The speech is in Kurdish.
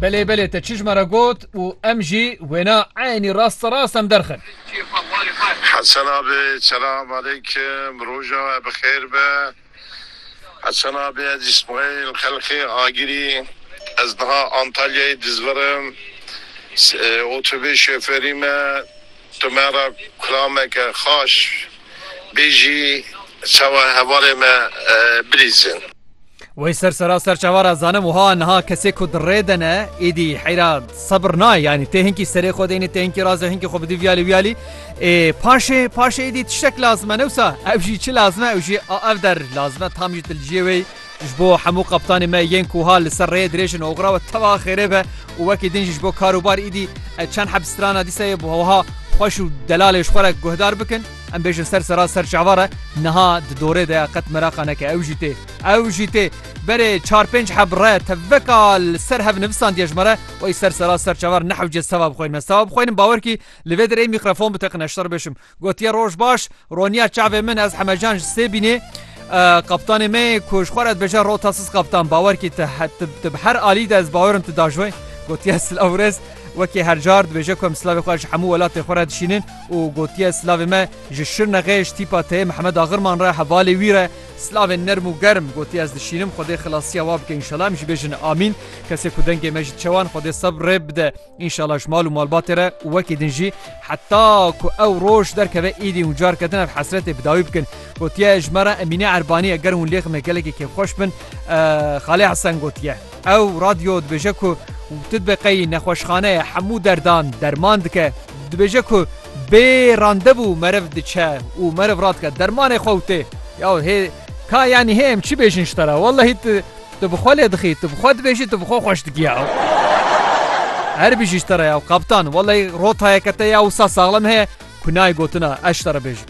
Belê belê te çijma re got û em jî wêna eynî rast bi rast em derxin. Hesen abi selam aleykim roja we bi xêr be Hesen abi ez ismail xelxê agirî ez niha antalyayê dizvirim otobê şoferi me Tu me re kurameke xaş bêjî çawa hevalê me bilîzin. Wey ser sera ser çawa re zanim wiha niha kesê ku di rê de ne êdî heyra sebir nayê yanî tê hinkî serê xwe deynê tê hinkî razê hinkî xwe bidî viyalî wiyalî ê paşê paşê êdî tiştek lazim e newsa ew jî çi lazim e ew jî a ev der lazim e tam jî tu li ciyê wê Ji bo hemû qeptanê me yên ku ha li ser rêyê dirêj in oxira we tewa xêrê be û wekî din jî ji bo kar û bar îdî ez çend heb strana dîseyê bi wiha xweş û delalê ji xwe re guhdar bikin em bêjin ser sera ser çava re niha di dorê de ya qet meraqa neke ew jî tê ew jî tê berê çar pênc heb re teveka li ser hev nivisandiye ji me re wey ser sera ser çava re nehewce seva bixweynim ez seva bixweynim bawer kî li vê derê mîkrofon biteqine ji te re bêjim Gotiye roj baş, roniya çavê min ez hemecan ji sê bînê. Kaptanê me yê ku ji xwe re dibêje rota siz kaptan bawer kî tu bi her alî de ez bawerim tu dajoyê. Gotiye silav rêz wekî her car dibêje ku em silavê xwe ji hemû welatê xwe re dişînin û gotiye silavê me ji Şirnexê ji tîpa teyê Mihemed Axirman re hevalê wî re silavên nerm û germ gotiye ez dişînim xwedê xilasiya wa bike înşela em jî bêjin amîn kesê ku dengê me ji çewan xwedê sebirê bide. Înşala ji mal û malbatê re û wekî din jî heta ku ew roj derkeve êdî hûn car ketin ev hesretê bi dawî bikin. Gotiye ji me re Emîne Erbanî eger hûn lê xime gelekî kêfxweş bin Xalê Hesen gotiye. Ew radyo dibêje ku tu dibe qey nexweşxane ye hemû derdan derman dike. Dibêje ku bê randevû meriv diçe û meriv radike dermanê xwe û tê. Ya hê ka yanî hê em çi bêjin ji te re wellehî tu Tu bi xwe lê dixî, tu bi xwe dibêjî tu bi xwe xweş dikî ya. Her bijî ji te re ya kaptan, welay rotayeke te ya wisa saxlem heye ku nayê gotina ez ji te re bêjim.